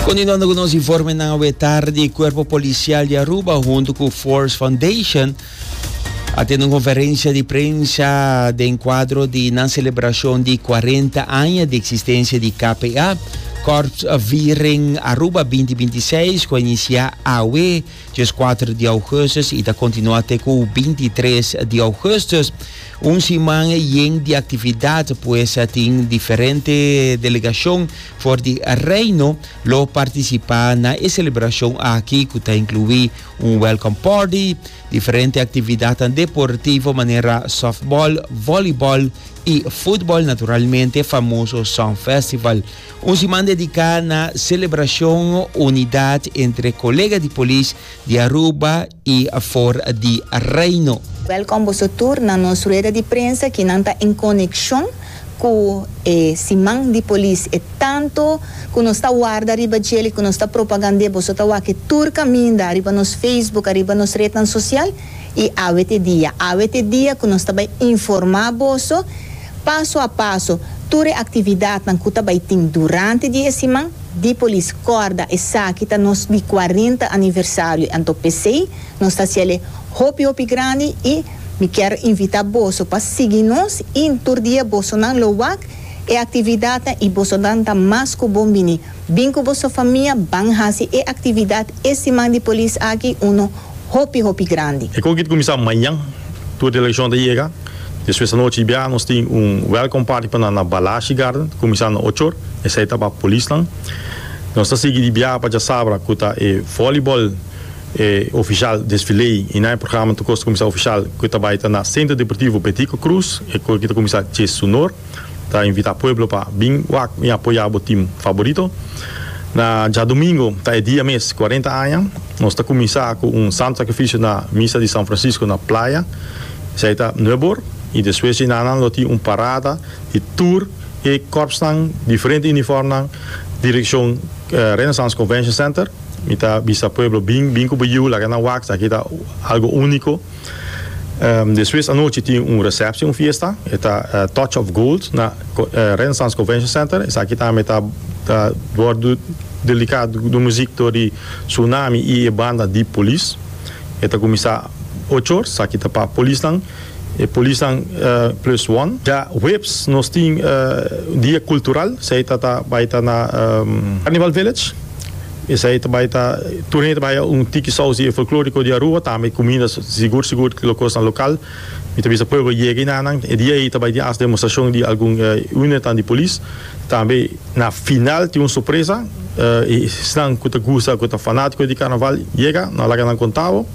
Kontinuando ku nos informenan awe tardi, Kuerpo Polisial di Aruba huntu ku Force Foundation a tene un konferensia di prensa den kuadro di nan selebrashon di kuarenta aña di eksistensia di KPA, Korpsviering Aruba binti binti seis, ku a inisiá awe. Djes kuater di ougustus i ta kontinuá te ku binti tres di ougustus. Un siman yen di aktividat pues tin diferente delegashon for di Reino lo partisipá na e selebrashon aki ku ta inkluí un welkom párty, diferente aktividatnan deportivo manera sòftbòl, vòlibòl i futbòl naturalmente famoso sònfèstival. Un siman dediká na selebrashon unidat entre kolega di polis di Aruba i for di Reino. Wèlkòm boso tur na nos rueda di prensa ki nan ta en konekshon ku e Siman di Polis. E tantu ku nos ta warda riba djel i ku nos ta propagand'é, boso ta wak-e tur kaminda riba nos Facebook, riba nos retnan sosial i awe te dia. Awe te dia ku nos ta bai informá boso. Paso a paso, tur e actividadnan cu ta bay tin durante di e siman di Polis Corda esaki ta nos di cuarenta aniversario anto pesey nos ta haciele hopi hopi grandi y mi kier invita boso pa sigui nos y tur dia bosonan lo wak e actividadnan y bosonan ta mas cu bon bini bin cu boso famia ban haci e actividad e siman di Polis aki uno hopi hopi grandi. E kogit kuminsá mañan, tur delegashon ta yega. Despues anochi i bia nos tin un welcome party pa nan na Balashi Garden, kuminsá na ochor, esei ta pa polisnan. Nos ta sigui di bia pa djasabra ku ta e vòlibòl e ofishal desfilé i na e programa tur kos ta kuminsá ofishal ku ta bai ta na Centro Deportivo Betico Cruz, e kogit ta kuminsá djes su nor. Ta invita pueblo pa bin wak y apoya bo team favorito. Na djadomingo ta e dia mes cuarenta aña. Nos ta cuminsa cu un santo sacrificio na misa di San Francisco na Playa. Esai ta nuebor y despues dje nanan lo tin un parada di tur e corpsnan diferente uniformnan direccion Renaissance Convention Center. Mi ta bisa pueblo bin bin cu bo yiu laga nan wak esaki ta algo unico. Despues anochi tin un reception, un fiesta, e ta Touch of Gold na Renaissance Convention Center. Esaki tambe ta ta wordu delika dor muzik dor di Tsunami y e banda di Police. E ta kuminsá ocho or, esaki ta pa polisnan, e polisnan plus one. Ya huebs nos tin dia cultural, esei ta ta bai ta na Carnival Village. Esei ta bai ta, tur hende ta bai a un tiki sousi e folkloriko di Arua, tambe e kuminda sigur sigur lo kosnan lokal. Mi ta bisa pueblo yega i na nan. E dia ei ta bai tin as demostrashon di algun unidadnan di polis. Tambe na final tin un sorpresa, esnan ku ta gusta, ku ta fanatiko di karnaval yega, no laga nan kontabo.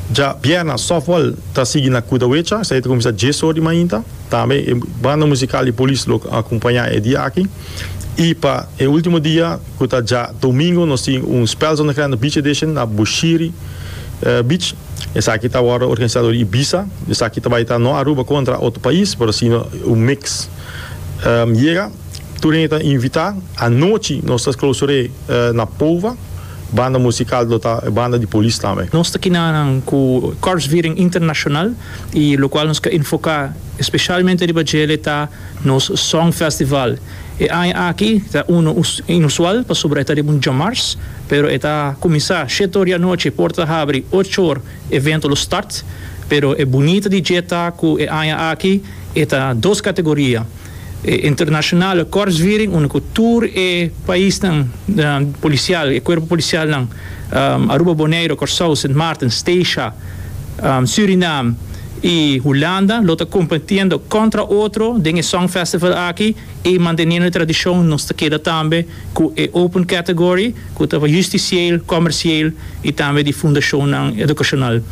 Dja bierna softball ta sigui na Kudawecha, esei ta kuminsá dies or di mainta. Tambe e banda musikal di polis lo akompañá e dia aki. I pa e último dia. Cu ta dja domingo nos tin un Spel Zonnegrande Beach Edition na Bushiri Beach. Esaki ta wordo organisa dor Ibiza. Esaki ta bai ta no Aruba contra otro pais, pero si no un mix. Yega, tur hende ta invita. Anochi nos ta clausure na Pova. Banda musical lo ta e banda di Polis tambe. Nos ta kina nan cu Korpsviering International y locual nos ca enfoca especialmente riba djele ta nos Songfestival. E aña aki ta unu inusual pasobra e ta riba un djamars, pero e ta kuminsá shete or di anochi, port ta habri ocho or, evento lo start. Pero e bunita di dje ta ku e aña aki e ta dos kategoria, e internashonal kòrsviring unda ku tur e paisnan polisial, e kuerpo polisialnan, Aruba, Boneiru, Kòrsou, Sint Maarten, Steisha, Surinam, y Hulanda lo ta competiendo contra otro den e song festival aki y manteniendo e tradicion nos ta keda tambe cu e open category cu ta justicieel, comercieel y tambe di fundacionnan educacional.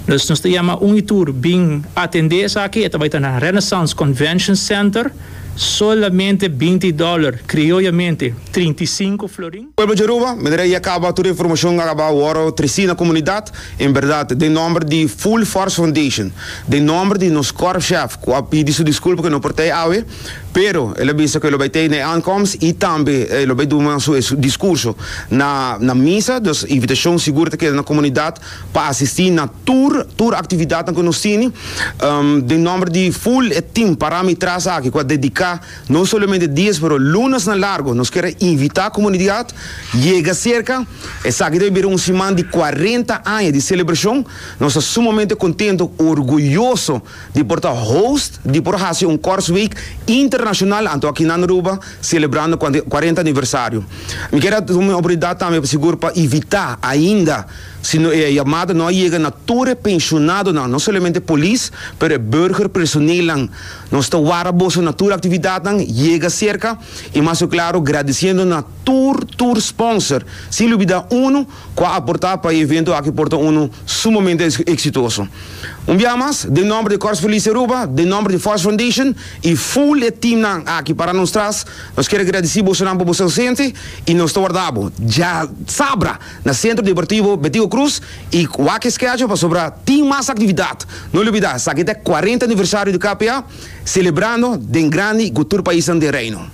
Dus nos ta yama un y tur bin atende esaki, e ta bay ta na Renaissance Convention Center, solamente binti dollar, crioyamente trinta y cinco florin. Pueblo dje Aruba, mi rei a caba tur e informacion a caba wor treci na comunidad, en berdad den nomber di Full Force Foundation, den nomber di nos korpschef cu a pidi su disculpa cu e no por ta ey awe, pero el a bisa cu e lo bay ta ey na e aankomst y tambe e lo bay duma su e discurso na na misa, dus invitacion sigur ta keda na comunidad pa asisti na tur tur actividadnan cu nos tini, den nomber di full e team parami tras aki cu a dedica. No solamente dies pero lunas na largo nos kier a invita comunidad yega cerca esaki ta bira un siman di cuarenta aña di celebracion nos ta sumamente contento orguyoso di por ta host di por haci un Korsweek internacional anto aki nan Aruba celebrando cuarenta aniversario mi kier a tuma e oportunidad tambe pa sigur pa invita ainda si no e yamada no a yega na tur e pensionadonan no solamente polis pero e burger personelnan. Nos ta wara boso na tur actividadnan Yega Cerca y mas cu claro gradiciendo na tur tur sponsor sin lubida uno cu a aporta pa e evento aki por ta uno sumamente exitoso. Un bia mas den nomber di Corps Police Aruba, den nomber di Force Foundation y full e teamnan aki para nos tras nos kier a gradici bosonan pa boso ausente y nos ta wardabo. Dja sabra! Na Sentro Deportivo Betico Cruz y wak schedule pasobra tin mas actividad. No olbida esaki ta e cuarenta aniversario di KPA celebrando den grandi cu tur paisnan den Reino.